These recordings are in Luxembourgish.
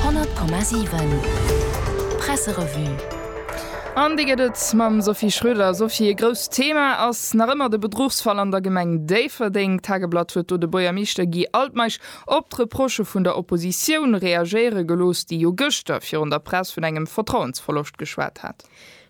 100,7 Presserevue An déi gëtt et mam Sophie Schröder. Sophie, e grousst Thema ass nach ëmmer de Bedruchsfall an der Gemeng Déifferdeng. D'Tageblatt huet do de Boiermeeschter Guy Altmeisch op d'Reprochë vun der Oppositioun reagéiere gelooss, déi jo gëschter virun der Press vun engem Vertrauensverloscht geschwat hat.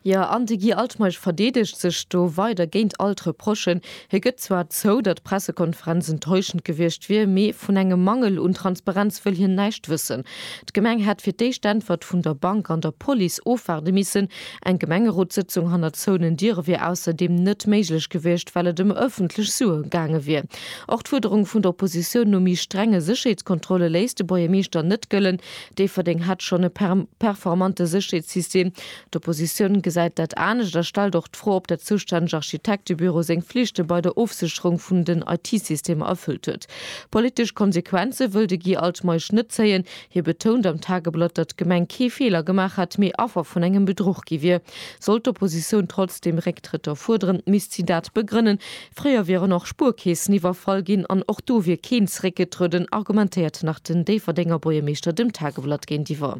Jo, an de Guy Altmeisch verdeedegt sech do weider géint all d'Reprochen. Hie gëtt zwar zou, datt d'Pressekonferenz enttäuschend gewiescht wier, mee vun engem Mangel un Transparenz wëll hien näischt wëssen. D'Gemeng hätt fir d'éischt Äntwert vun der Bank an der Police ofwaarde missen. Eng Gemengerotssëtzung hannert zouenen Diere wier ausserdeem net méiglech gewiescht, well et ëm ëffentlech Sue gaange wier. Och d'Fuerderung vun der Oppositioun no méi strenge Sécherheetskontrolle léisst de Buergermeeschter net gëllen. Déifferdeng hätt schonn e performante Sécherheetssystem. D'Oppositioun gesäit dat anescht a stellt och d'Fro, ob dat zoustänneg Architektebüro seng Flichte bei der Ofsécherung vun den IT-Systemer erfüllt huet. Politesch Konsequenze wëll de Guy Altmeisch net zéien. Hie betount am Tageblatt, datt d'Gemeng kee Feeler gemaach hätt, mee Affer vun engem Bedruch gi wier. Sollt d'Oppositioun trotzdeem Récktrëtter fuerderen, misst si dat begrënnen. Fréier wieren och Spuerkeesen iwwerfall ginn an och do wier keen zeréckgetrueden, argumentéiert nach den Déifferdenger Buergermeeschter dem Tageblatt géintiwwer.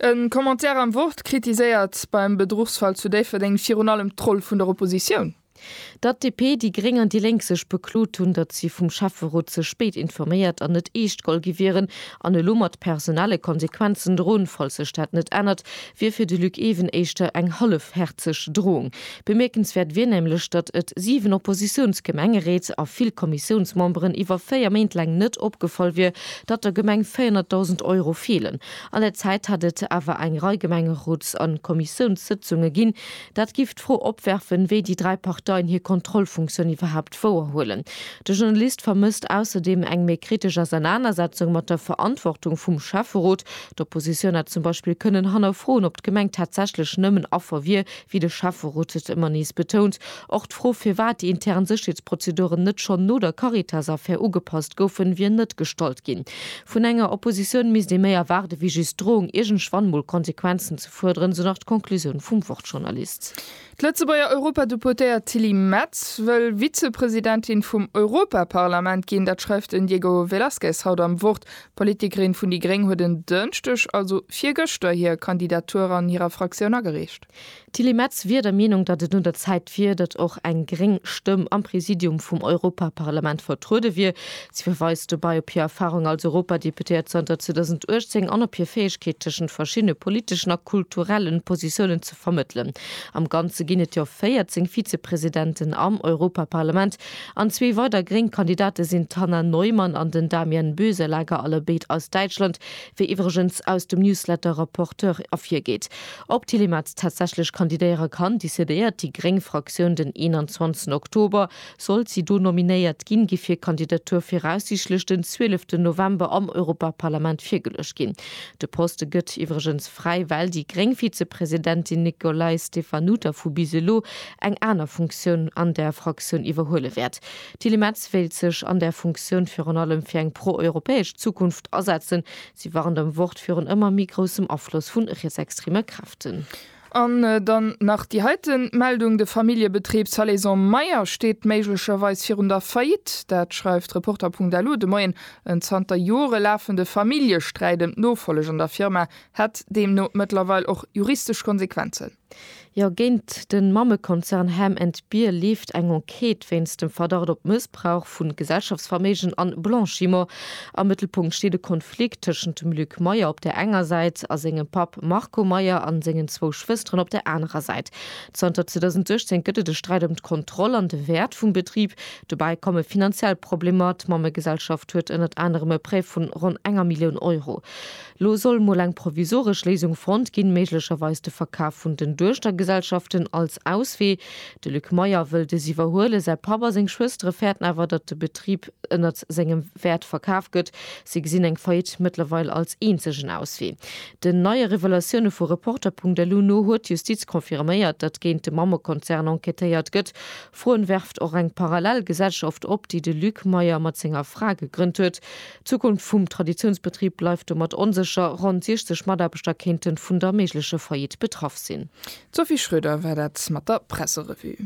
E Commentaire am Wort kritiséiert beim Bedruchsfall zu Déifferdeng virun allem d'Roll vun der Oppositioun. Datt DP, déi Gréng an déi Lénk sech beklot hunn, datt si vum Schäfferot ze spéit informéiert an net eescht gall gi wieren an elo mat personelle Konsequenzen droen, falls sech dat net ännert, wier fir de Luc Even éischter eng hallefhäerzeg Drohung. Bemierkenswäert wier nämlech, datt et 7 Oppositiounsgemengeréit a vill Kommissiounsmemberen iwwer 4 Méint laang net opgefall wier, datt der Gemeng 400.000 Euro feelen. An der Zäit hätt et awer eng Rei Gemengeroots a Kommissiounssëtzunge ginn. Dat giff d'Fro opwerfen, wéi déi dräi Parteien hir Kontrollfunktioun iwwerhaapt wouerhuelen. De Journalist vermësst ausserdeem eng méi kritesch Ausernanersetzung mat der Verantwortung vum Schäfferot. D'Oppositioun hätt zum Beispill kënnen hannerfroen, ob d'Gemeng tatsächlech nëmmen Affer wier, Wéi de Schäfferot et ëmmer nees betount, och d'Fro firwat déi intern Sécherheetsprozeduren net schonn no der Caritas-Affär ugepasst goufen, wier net gestallt ginn. Vun enger Oppositioun misst ee méi erwaarde wéi just d'Droung iergendwann mol Konsequenzen ze fuerderen, esou nach d'Conclusioun vum Wort-Journalist. D'Lëtzebuerger Europadeputéiert Tilly Metz wëll Vizepresidentin vum Europaparlament ginn. Dat schreift den Diego Velázquez haut am Wort. D'Politikerin vun déi gréng huet en Dënschdeg, also virgëschter, hir Kandidatur an hirer Fraktioun agereecht. D'Tilly Metz wier der Meenung, datt et un der Zäit wier, datt och eng gréng Stëmm am Präsidium vum Europaparlament vertruede wier. Si verweist dobäi op hir Erfarung als Europadeputéiert zanter 2018 an op hir Fäegkeet, tëschent verschiddene politeschen a kulturelle Positiounen ze vermëttelen. Am Ganze ginn et jo 14 Vizepresidenten am Europaparlament, An zwee weider gréng Kandidate sinn d'Hannah Neumann an den Damian Boeselager, allebéid aus Däitschland, wéi iwwregens aus dem Newsletter Rapporteur ervirgeet. Ob d'Tilly Metz tatsächlech kandidéiere kann, decidéiert déi gréng Fraktioun den 21 Oktober. Sollt si do nominéiert ginn, géif hir Kandidatur viraussiichtlech den 12 November am Europaparlament virgeluecht ginn. De Poste gëtt iwwregens fräi, well déi gréng Vizepresidentin Nicolai Stefanuta vu bis elo eng aner Funktioun an där Fraktioun iwwerhuele wäert. D'Tilly Metz wéilt sech an där Funktioun virun allem fir eng pro-europäesch Zukunft asetzen. Si warnt am Wort virun ëmmer méi groussem Afloss vu rietsextreme Kräften. An dann nach déi heite Meldung, De Familljebetrib Salaison Meyer steet méiglecherweis virun der Faillite. Dat schreift Reporter.lu de Moien. En zanter Jore lafende Familljesträit ëm d'Nofolleg an der Firma hätt deemno mëttlerweil och juristesch Konsequenzen. Jo, géint de Mammekonzern Ham and Beer leeft eng Enquête wéinst dem Verdacht op Mëssbrauch vu Gesellschaftsverméigen a Blanchiment. Am Mëttelpunkt steet e Konflikt tëschent dem Luc Meyer op der enger Säit a sengem Papp Marco Meyer a sengen zwou Schwësteren op der anerer Säit. Zanter 2016 gëtt et e Sträit ëm d'Kontroll an de Wäert vum Betrib. Dobäi komme finanziell Problemer, D'Mammegesellschaft huet ënnert anerem e Prêt vu ronn enger Millioun Euro. Lo soll mol eng provisoresch Léisung fonnt ginn, méiglecherweis de Verkaf vun den Duechtergesellschaften als Auswee. De Luc Meyer wëll dës iwwerhuelen. Säi Papp a seng Schwëstere fäerten awer, datt de Betrib ënnert sengem Wäert verkaf gëtt. Si gesinn eng Faillite mëttlerweil als eenzegen Auswee. Den neie Revelatioune vu Reporter.lu no huet d'Justiz confirméiert, datt géint de Mammekonzern enquêtéiert gëtt. Froen werft och eng parallel Gesellschaft op, déi de Luc Meyer mat senger Fra gegrënnt huet. D'Zukunft vum Traditiounsbetrib bleift domat onsécher. Ronn 60 Mataarbechter kéinte vun der méiglecher Faillite betraff sinn. D'Sophie Schröder war dat mat der Presserevue.